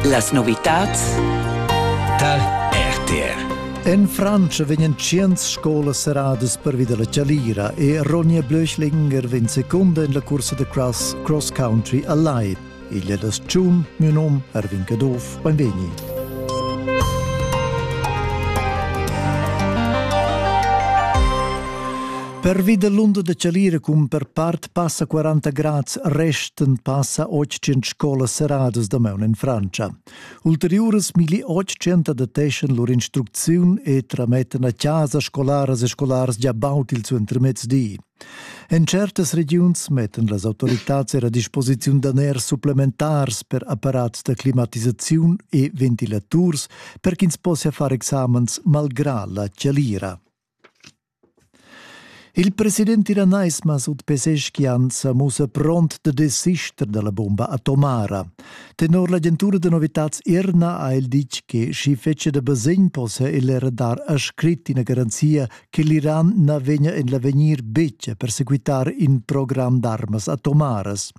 Las novitads tar RTR. In Francia vegnan tschient scolas serradas pervi dalla chalira e Ronja Blöchlinger vegn secunda en la cursa da cross Cross Country Allied. Igl è das Tschum, mio nom Erwin Caduff, benvegni. Pervi dall'onda da chalira cun per part Passa 40 grads resten passa 800 scolas serradas damaun in Francia. Ulteriuras milli 800 adeteschan lur instrucziun e tramettan a casa scolaras e scolaras già baut il suentermezdi. En certas regiuns mettan las autoritads er a disposiziun daners supplementars per apparats da climatisaziun e ventilaturs per ch'ins possia far examens malgrà la chalira. Il president iranais Masud Pezeshkian sa mussa pront da desister da la bumba atomara. Tenor l'agentura da novitads Irna ha el ditg che sch'i fetschia da basegn possa el era dar a scrit ina garanzia che l'Iran na vegnia en l'avegnir betg a persequitar in program d'armas atomaras.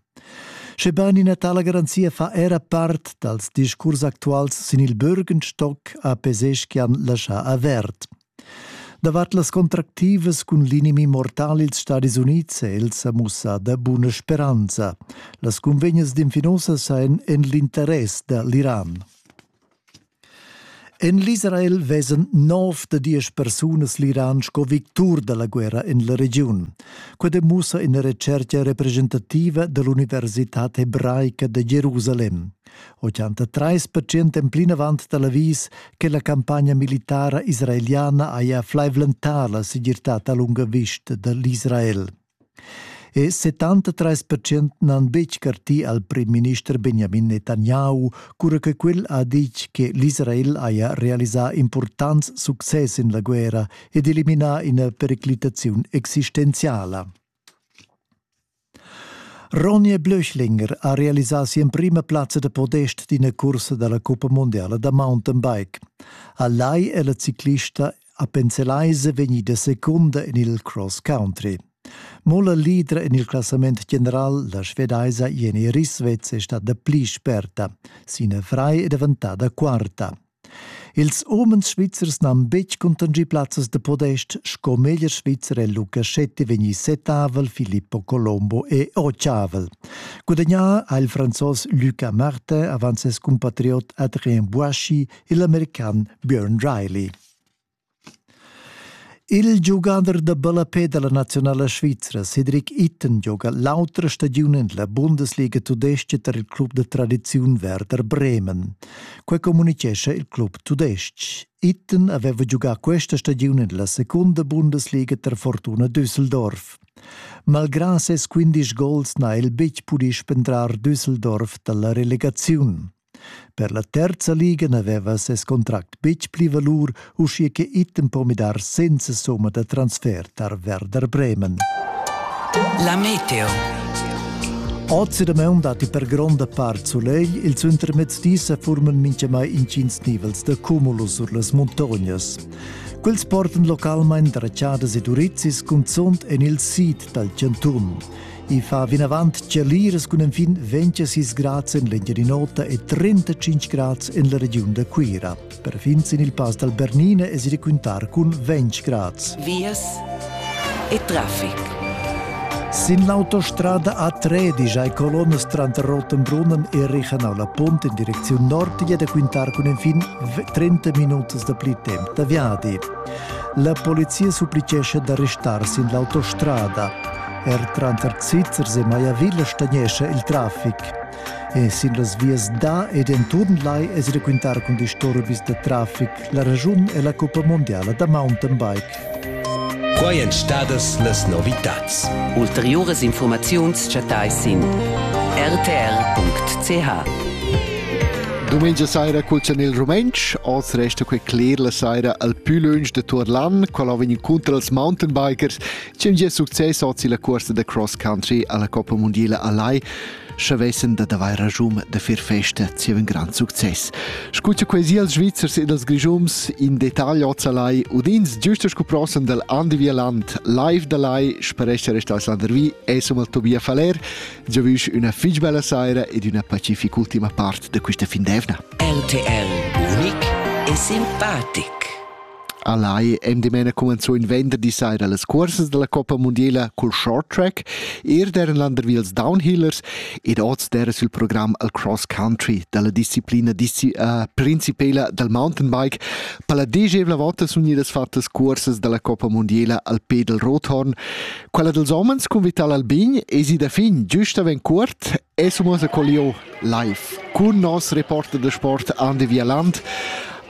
Schebain ina tala garanzia fa era part dals discurs actuals sin il Bürgenstock ha Pezeshkian laschà avert. Davart las contractivas cun l'inimi mortal ils Stadis Unids è el sa mussà da buna speranza. Las cunvegnas d'infinussas ein en l'interess da l'Iran. En l'Israel vesan nov da diesch persunas l'Iran sco victur da la guerra en la regiun. Quai demussa ina recerca representativa dall'Universitad hebraica da Jerusalem. 83 percent en plinavant da l'avis che la campagna militara israeliana haja flaivlentà la segirtad a lunga vista da l'Israel. E 73 percent n'han betg cartì al prim-minister Benjamin Netanyahu, cura che quel ha ditg che l'Israel haja realisà impurtants success en la guerra ed eliminà ina periclitaziun existenziala. Ronja Blöchlinger ha realisà si'emprima plazza da podest d'ina cursa da la cuppa mundiala da mountainbike. A Lai è la ciclista Appenzelaise vegnida secunda en il cross country. Mo la leader en il classament general, la svedaisa Jenny Risvetz, è stata pli sperta. Sina Frei è daventada quarta. Ils umens svizzers n'han betg contangì plazzas da podest sco meglier svizzer è Lucasetti vegnì settavel, Filippo Colombo è ottavel. Gudagnà ha il franzos Luca Martin avant ses cumpatriot Adrien Boischi e l'american Björn Riley. Il giugader da ballapè da la naziunala svizra Cedric Itten gioga l'autra stagiun en la Bundesliga tudestga tar il club da tradiziun Werder Bremen. Quai communitgescha il club tudestg. Itten aveva giugà questa stagiun en la secunda Bundesliga tar Fortuna Düsseldorf. Malgrà ses 15 gols n'ha el betg pudì spendrar Düsseldorf da la relegaziun. Per la terza liga n'aveva ses contract betg pli valur, uschia che Itten po midar senza somma da transfer tar Werder Bremen. La Meteo. Ozi damaun datti per gronda part sulegl, il suentermezdi sa forman mintgamai intgins nivels da cumulus sur las muntognas. Quels portan localmain dracciadas e durizis cunzunt en il sid dal chantun. I fa vinavant tgeliras cun enfin 26 grads en l'Engiadin'Ota e 35 grads en la regiun da Cuira. Perfin sin il pass dal Bernina es il raquintar cun 20 grads. Vias e traffic. Sin l'autostrada A3 digiai colonnas tranter Rottenbrunnen e Reichenau la Pont in direcziun nord è da quintar cun enfin 30 minutas da pli temp da viadi. La polizia supplicescha da restar sin l'autostrada. Er tranter Zizers e Maiavilla stagnescha il traffic. E sin las vias da ed enturn lai es raquintar cun disturbis da traffic la ragiun e la cuppa mondiala da mountain bike. Quai èn stadas las novitads. Ulteriuras informaziuns chattais sin rtr.ch. Dumengia saira culzan il rumentsch, oz resta quei cler la saira al più lunsch de Turlan, qual ha vegn incontro als mountainbikers Cun gie success ord la cuorsa da cross country alla Coppa Mondiala a Lai, sche vessen da daver ragium da fir festa zieva un grand success. Scuccia quasi als Svizzers ed als Grigiums in detagl oz a Lai, udins giusto scu prossem dal Andevialand, live da Lai, sparesce resta a Slandervi, e som al Tobia Faler, giovisch una fig bella saira ed una pacifica ultima part de questa fin d'evna. RTL Unic e simpatic. A Lai èn dimena cumenzò in venderdi saira las cuorsas dalla Coppa mundiala cul short track, eir der en Landerwils Downhillers ed oz dera sil program al cross country dalla disciplina disci uh, principela dal mountainbike. Per la degevla volta sun gnidas fattas cuorsas dalla Coppa mundiala al Pedel Rothorn. Quella dels homens cun Vital Albin es i da fin giusta ven cuort Es muossa col lieu live cun nos reporter da sport Andi Vialand.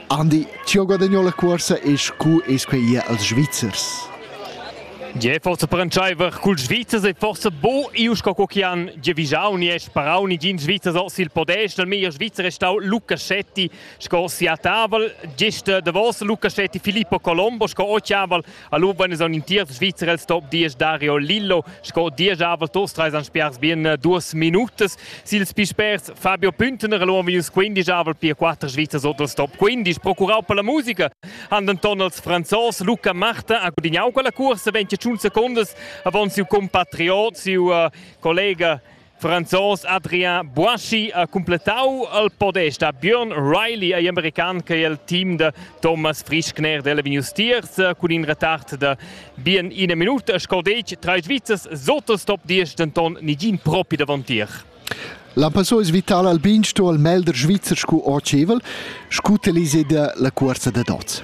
Andi, ti ho guadagnou la cuorsa e scu es quei ir als Svizzers? Gie, forse per entscheiver cul Svizzers e forse bo iu sco co chi han giavijau ni e sparau ni gin Svizzers os il podest. Il meglier Svizzer è stau Lucascetti sco sia tavel. Gest davos Lucascetti Filippo Colombo sco ochiavel Allura eis aunc in tiert Svizzer el stop diesch Dario Lillo sco diesch avel Tostreis han spiars bien äh, duas minutas. Sils pispers Fabio Püntner lo minus 15 avel pia quatter Svizzers oters stop 15 procurau per la musica han denton els Franzos Luca Marta ha gudignau quella cursa 20 secondas avon siu compatriot siu uh, collega Franzos Adrien Boischi ha cumplettau al podest a Björn Riley ei american che el team da Thomas Frischkner della Venius Tiers cun in retard da bien ina minuta sco detg trais Svizzers sottos top 10 denton nigin propi davontier. L'Ampasso es vital al bin sto al melder svizzer scu ocevel, scu telise da la cuorsa da dots.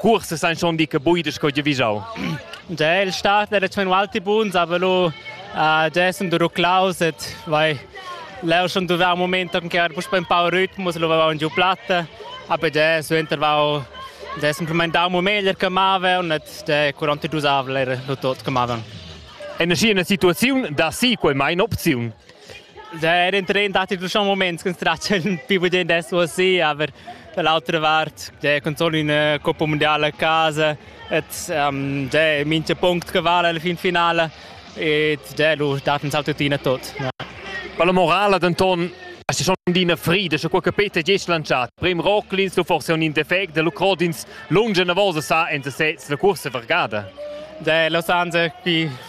Cursas ein schon dica buidas co giavischau. Ja, il start era schon alti buns, aber lu uh, dessen du ruclaus et vai leu schon duvau un moment che era puspe un po' ritmus, lu vau giù platta, aber ja, suenter vau dessen implementau mo meglier che mava und et de 42 avler lu tot che mava. È nascì una situazione da sì, quei mai un'opzione. Eran tren datti schon moments che tratta il più bien adesso sì, aber dall'altra vart, ja, con solo in Coppa Mondiale a casa, et um, ja, mincha punct che vala alla fin finale et ja, lu dat uns tuttina tot. Ja. Per la morale denton Asti schon d'ina frida, sche qualche pete gest lanciat. Prem Rocklins, du forse un indefect, de Lucrodins lunge una volta sa en sesez la cursa vergada. De Los Angeles qui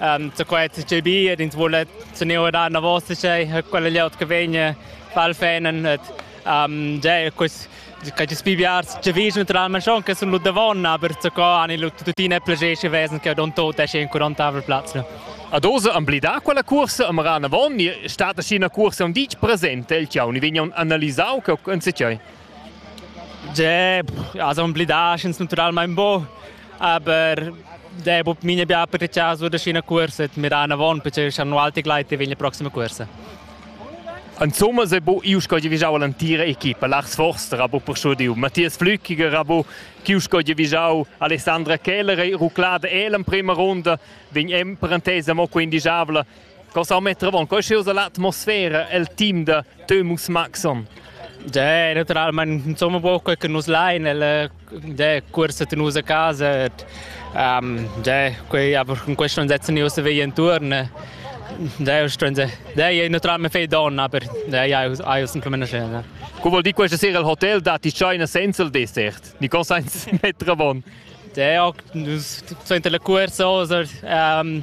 Um, da quai è il bi ed ins vuole tenere da una voce che quella lieut che vegna val fenen et um, ja quest che ti spibiar che vis naturalmente schon che sono davon aber zu co ani lu tutina plagesce wesen che don tot esce in curantavel platz A dose amblidà quella cursa am ran avon ni stata scina cursa un ditg presente il chiau ni vegnan analisau che en se chai Ja, also amblidar ist naturalmente bo. Aber der bu mine bia per chaso da scina cuorsa et mira avon perché schan alti gleit e vegn la prossima cuorsa. Insomma se bo iu sco divigiau l'antira equipa Lars Forster a bo per schudiu Matthias Flückiger a bo chi sco divigiau Alessandra Keller e ruclada el en prima ronda vegn en parentesa mo quindigiabla Cosa metter avon quei schius l'atmosfera el team de Thomas Maxon? Dai, naturalmente, insomma, quel che nus lain, el dai, cursa tenus a casa, um, dai, quei, aber in questo non setzen io se vei intorno. Dai, dai, naturalmente fei donna, aber dai, hai semplicemente scena. Come vuol dire questa sera al hotel da ti c'hai una senza il dessert? Di cosa metter avon? Dai, so inter le curse, um,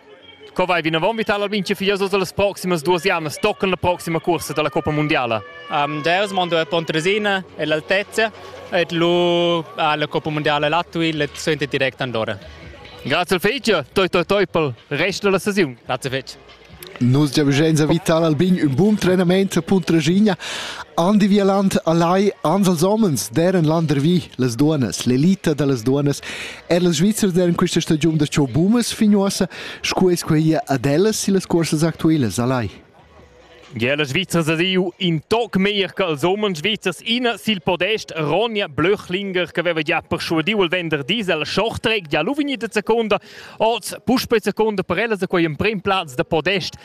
Co vai vinavon Vital Albinci Figlioso las proximas duas jamnas toccan la proxima cursa dalla Coppa Mondiala? Um, Deus mondo è Pontresina, è l'altezza e lu alla Coppa Mondiala Latui le sente direct Andorra. Grazie al Fece, toi toi toi per resto della stagione. Grazie Fece. Nus giavisch a Vital Albin un buon trenament a Puntraschigna. Andi Vieland a Lai ans als homens, deren landervi les duonas, l'elita da les duonas Er la Svizra en questa stagiun da ciò bumas fignosa, sco es quei ad ellas e las cursas actuelas alai. Ja, la Svizra sa diu in toc meglier ch'als umens svizzers ina sil podest Ronja Blöchlinger che aveva già persuadiu il venderdi al Shorttrack ja lu vegnida seconda, oz puspei seconda per ella se quei emprem plaz da podest.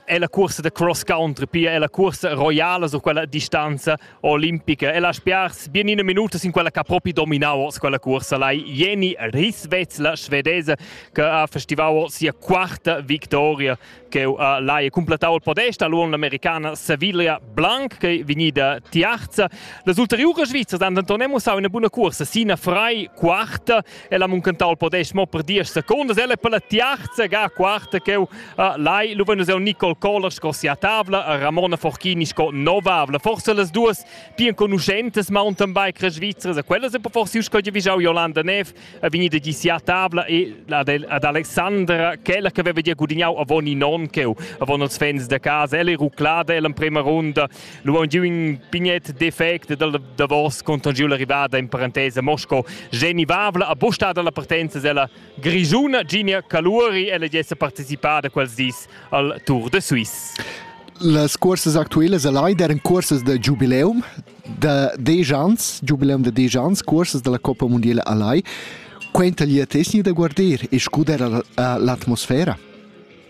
è la cursa da cross country, pia è la cursa roiala su quella distanza olimpica. E la spiars bien ina minuta sin quella che ha propi dominau quella cursa, la Jenny Risvetz, la svedese, che ha festivau sia quarta victoria che uh, l'ha completau il podest all'uon l'americana Sevilla Blanc che vegnida tiarza. Le ulteriori svizzers hanno Antonemo sau una buona cursa, sina frei quarta El ha muncentau il podest mo per diesch secundas. El è per la tiarza ga quarta ch'eu uh, lai luven el Nicole Kohler sco sia tavla e Ramona Forchini sco novavla. Forse las duas più enconuschentes mountainbiker svizzere, e quella sempre forse usca di vigiau Jolanda Nev, è vegnida di sia tavla e ad Alexandra, quella che aveva di gudignau avon i non ch'eu, avon els fans de casa, elle ruclada, elle in prima runda Lu aunc giu in pignet defect dal davos contan giu la rivada in parentesa Mosco Geni Vavla a busta dalla partenza sella grigiuna Ginia Caluri ella jessa partecipada quels dis al Tour de Suisse. Las cursas actuelas a Leiden eran cursas da giubileum da dieci ans, giubileum da dieci ans, cursas dalla Coppa Mondiale a Lai. Quenta gli atesni da guarder e scudar l'atmosfera.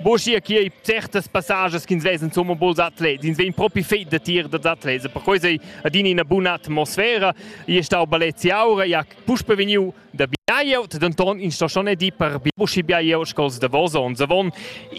Boschia chi ei certas passages ch'ins vesa insomma buls atlets, ins vegn propi fet da tir dad atlets, per quei sei adina ina buna atmosfera. Io è stau Balezi Aura, ja puspe vegniu da Biaglieut, denton in stagione di per Bibushi Biaglieut scols Davos onns avon.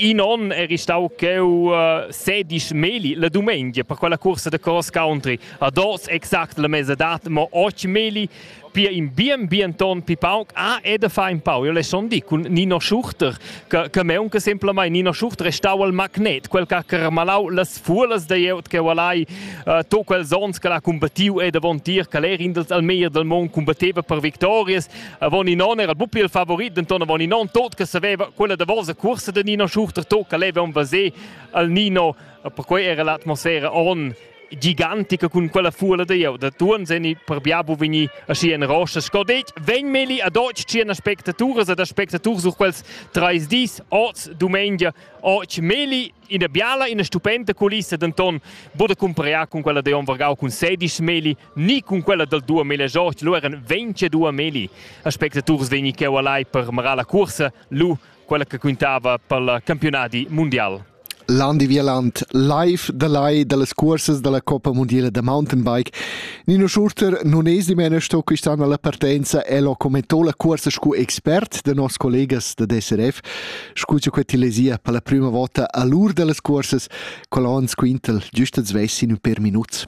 In onn eri stau cheu uh, sedisch meli la domenica per quella cursa de cross country. A dos exact la mesa dat, mo ochi meli. Pia in bien bienton pi pauc ah e da far in pau. Io le son di cun Nino Schuchter che che me unca semplamain Nino Schuchter restau al magnet, quel che ha carmalau las fulas da ieut che valai uh, to quels ons che l'ha combattiu e davon tier che l'er indels al meir del mond combatteva per victorias. Avon in non era il bupi il favorit, denton avon in non tot che saveva quella davosa cursa de Nino Schuchter to che leva un vasé al Nino, perquei era l'atmosfera on gigantica cun quella fuola da jeu da tuorn seni per bia bu vegni aschi en rosa sco detg vegn meli a deutsch ci en aspectaturas ed aspectaturs sur quels treis dis oz dumengia oggi meli ina biala ina stupenda culissa denton bude cumpariar con quella de on vargau cun sedisch meli ni con quella dal dua meli joch lu eran 22 meli aspectaturs vegni cheu allai per marar la cursa lu quella che quintava per il campionati mondial Landi Vialant live da lai dallas cuorsas dalla Coppa mundiala da mountainbike. Nino Schurter non es dimena sto quist'anno alla partenza el ho commentò la cuorsa scu expert da nos collegas da DSRF, scu cha quel tilesia per la prüma vota all'ur dallas cuorsas col Hans Quintel, giüst als vessin ün per minuts.